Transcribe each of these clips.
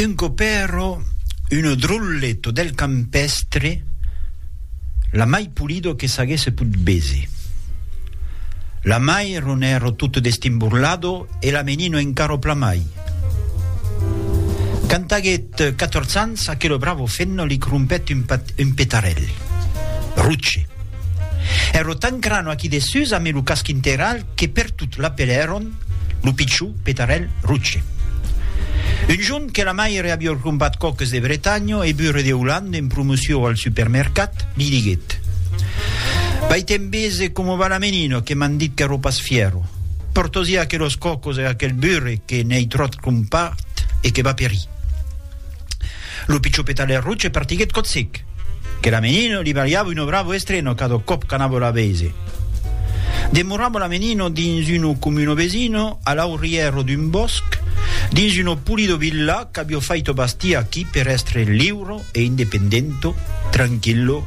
Un copero, uno drolleto del campestre, la mai polido que s'aguèsse put bese. La mai ronèro tot destimborlado e la menino encaro plamai. Quand aguèt catòrz ans, aquelo bravo fenno li crompèt un pat, un petarèl. Ruche. Èro tan crano aquí dessús, amé lo casc integral, que pertot l'apelèron lo pichon petarèl roche. Un jorn que la maire a viu crompat coques de Bretanha e burre de Holanda en promoció al supermercat, li diguèt, Vai te'n vese coma va la menina que m'an dit qu'èro pas fièro. Portosí aquelos cocos e aquel burre que n'ei tròt crompat e que va perir. Lo pichó petaler roch e partiguèt cotzic. Que la menino li balhava uno bravo estreno cada còp qu'anava la veise. Demorava la menino dins uno comino vesino, a l'aurièro d'un bòsc, dins uno pulido villà qu'avió faito bastir aquí per èstre liuro e independento, tranquillo,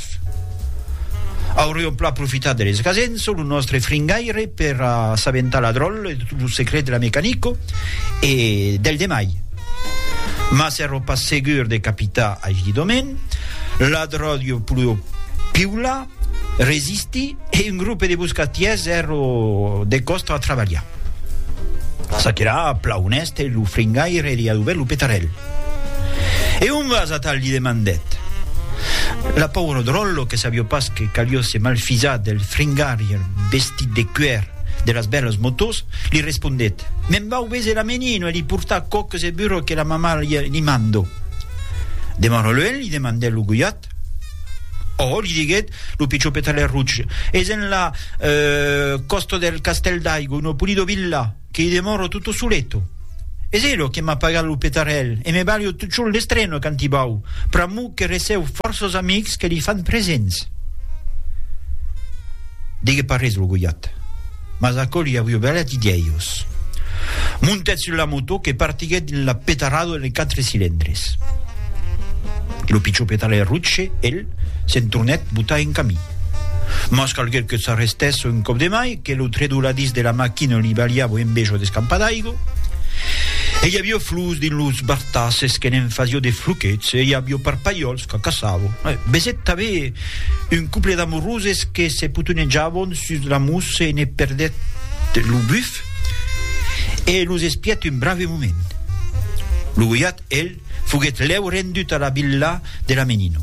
Pòrts. Auriom plan profitat de l'esgasenço, lo nòstre fringaire, per assabentar la dròlle de tot lo secret de la Mecanico e del demai. Mas èro pas segur de capitar aigí domen, la dròlle pulèu piular, resistir e un grupe de buscatièrs èro de còstra a trabalhar. Çaquelà, plan onèste, lo fringaire li a duvèrt lo petarèl. E on vas, atal? li demandèt. La pauro dròllo que sabió pas que calió se malfisar del fringarier vestit de cuèr de las bèlas motòs, li respondèt, Me'n vau véser la menino e li portar quò que se burro que la mamà li mando. De Maroluen? li demandèt lo goiat. Òh! li diguèt lo pichopetaler Ruch, es enlà, còsto del castèl d'aigo, no pulido villà. Qu'i demòro tutto soleto. Es elo que m'a pagat lo petarèl e me balho totjorn l'estreno quand i vau, pr'amor que recèu fòrços amics que li fan presents. Digues pas res, lo Gojat. Mas aquò li avió balhat i dièios. Montèt sus la motò que partiguèt dins la petarada de quatre cilindres. Lo pichó petarèl Rutsche, el, Se'n tornèt botar en camin. Mas calguèt que s'arrestèsse un còp de mai, que lo tredoladís de la maquina li balhava un bejo d'escampa d'aigo. E i avió flus dins los bartasses que ne'n fasió de fluquets, e i avió parpalhòls que caçavo. E besèt tanben un couple d'amoroses que se potonejavon sus la mousse e ne perdèt lo buf e los espièt un brave moment. Lo goiat, el, Foguèt lèu rendut a la villa de la Menino.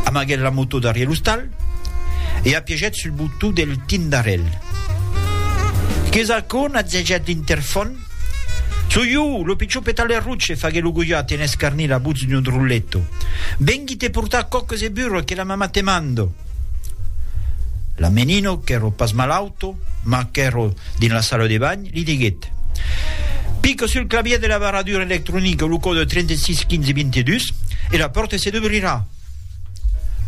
Amaguèt la motò darrièr l'ostal e apiegèt sul botó del tindarèl. Qu'es aquò? natzegèt l'intèrfon. Soi jo, lo pichon Petalerruche, faguèt lo gojat en escarnir la votz d'un drolleto. Vengui te portar còques e burro que la mamà te mando. La Menino, qu'èro pas malauto, ma qu'èro dins la sala de banh, Li diguèt, Pica sul clavièr de la barradura electronica lo còde 36 15 22 e la pòrta se dubrirà.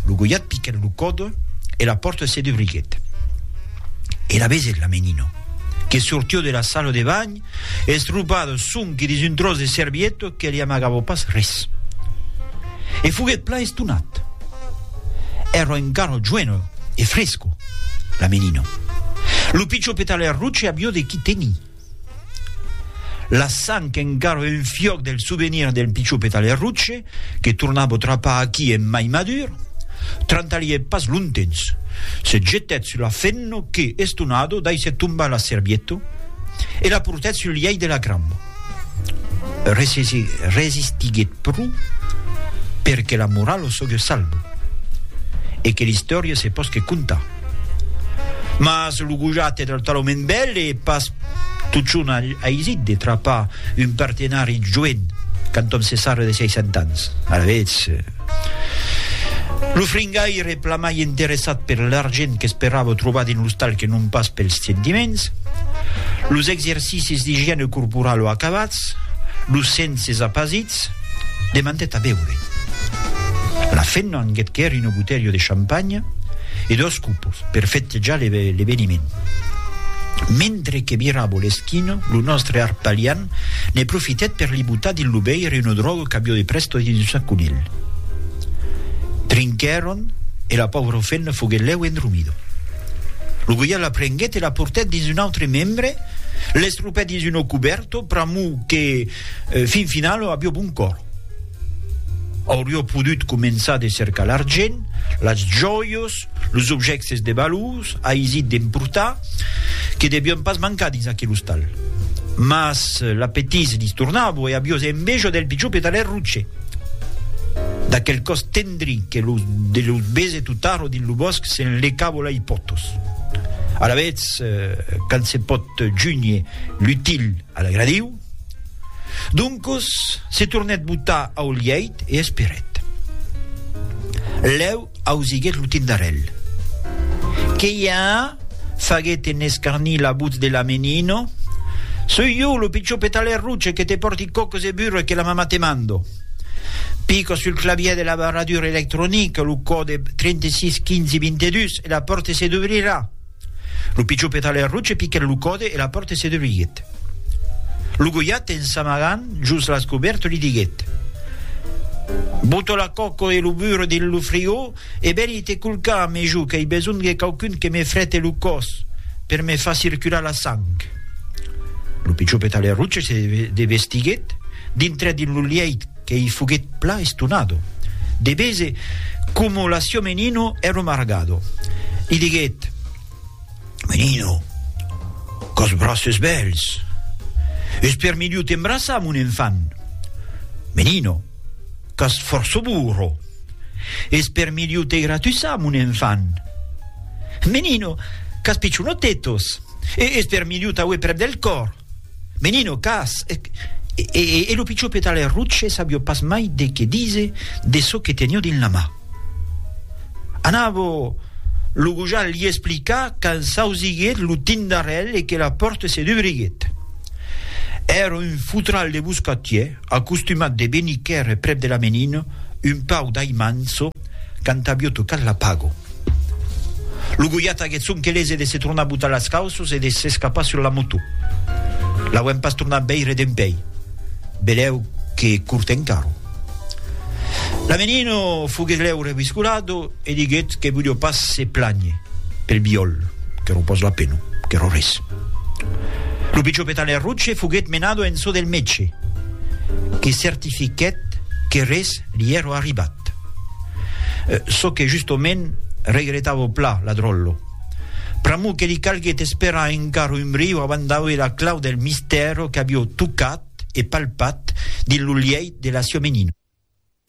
Lo goiat piquèt lo còde e la pòrta se dubriguèt. Èra Bezet, la menina, que sortió de la sala de banh, estropada sonque dins un tròç de servieta que li amagava pas res. E foguèt plan estonat. Èra encara joena e fresca. La Menino. Lo pichó petaler roche avió de qui tenir. La sang qu'engarve un fiòc del souvenir del pichó petaler roche, que tornavo trapar aquí en mai madur, trantalhèt pas longtemps. Se jetèt sul la fenno que, estonado, daissèt tombar la servietto e la portèt sul lièit de la cramba. resistiguèt pro per que la morala o sogue salvo e que l'istòria se posque contar. Mas lo gojat e del talament bèl e pas totjorn aisit de trapar un partenari joen quand òm se sarre de 60 ans. Alavetz. Lo fringaire, plan mai interessat per l'argent qu'esperava trobar dins l'ostal que non pas pels sentiments. Los exercicis d'igiène corporalo acabats, los senses apasits, demandèt a beure. La femna anguèt quèri una botelha de champanya e dos copos per fettejar l'eveniment. Mentre que viravo l'esquina, lo nòstre arpalian Ne profitèt per li botar dins lo veire una dròga qu'avió de prèsto dins un sac conilh. Trinquèron e la pauvra femna foguèt lèu endromida. Lo goiat la prenguèt e la portèt dins un autre membre, l'estropèt dins un ocubèrto pr'amor que, fin finalo, avió bon còr. Aurió podut començar de cercar l'argent, las jòias, los objèctes de valors aisit d'emportar, que devián pas mancar dins aquel ostal. Mas l'apetís li tornava e aviós enveja del pichon petalèr roche, d'aquel còs tendri que lo de los bese totaro dins lo bòsc se'n lecava lei pòtos. Alavetz, quand se pòt junhe l'util a l'agradiu, Doncos, se tornèt botar au lièit e esperèt. Lèu ausiguèt lo tindarèl. Que i a? faguèt en escarnir la votz de la menino. Soi jo, lo pichon petalèr roche que te pòrti còcos e burre que la mamà te mando. Pica sul clavièr de l'abarradur electronic lo còde 36 15 22 e la pòrte se dubrirà. Lo pichó petalèr roche piquèt lo còde e la pòrte se derruiguèt. Lo goiat, en s'amagant jos las cobèrtes, li diguèt, Botó la còco e lo burro dins lo frigó e veni te culcar a me jo qu'ai besonh de quauqu'un que me frète lo còs per me far circular la sang. Lo pichó petalèr roche se devestiguèt, dintrèt dins lo lièit, Qu'ei foguet plan estonado. De bese, como l'aciò Menino ero margado. Li diguet, Menino, quò's braces bèls! Es per miliu t'embraçar, mon enfant! Menino, qu'as fòrço burro! Es per miliu te gratussar, mon enfant! Menino, qu'as pichonotetos! Es per miliu t'auer prèp del còr! Menin au cas, e lo pichó petaler Rutsche sabió pas mai de qué dise de çò que tenió dins la mà. Anavo lo gojal li explicar quand s'ausiguèt lo tindarèl e que la pòrte se dubriguèt. Èra un fotral de boscatier, acostumat de venir quèrre prèp de la Menina, un pau d'aimanço, Quand avió tocat la pago. Lo Goliat aguèt sonque lese de se tornar botar las cauços e de s'escapar sur la moto. L'auem pas tornat veire dempèi. Belèu que cort encaro. La menino foguèt lèu reviscolado e diguèt que volió pas se plànher pel biòl, qu'èro pas la pena, qu'èro res. Lo pichó Petaler Roche foguèt menado en çò del mètge, que certifiquèt que res li èro arribat. Cat. Çò que justomènt regretavo pla, la dròllo. Pr'amor que li calguèt esperar encara un briu avant d'auer la clau del mistèro qu'avió tocat e palpat dins lo lièit de la siomenina.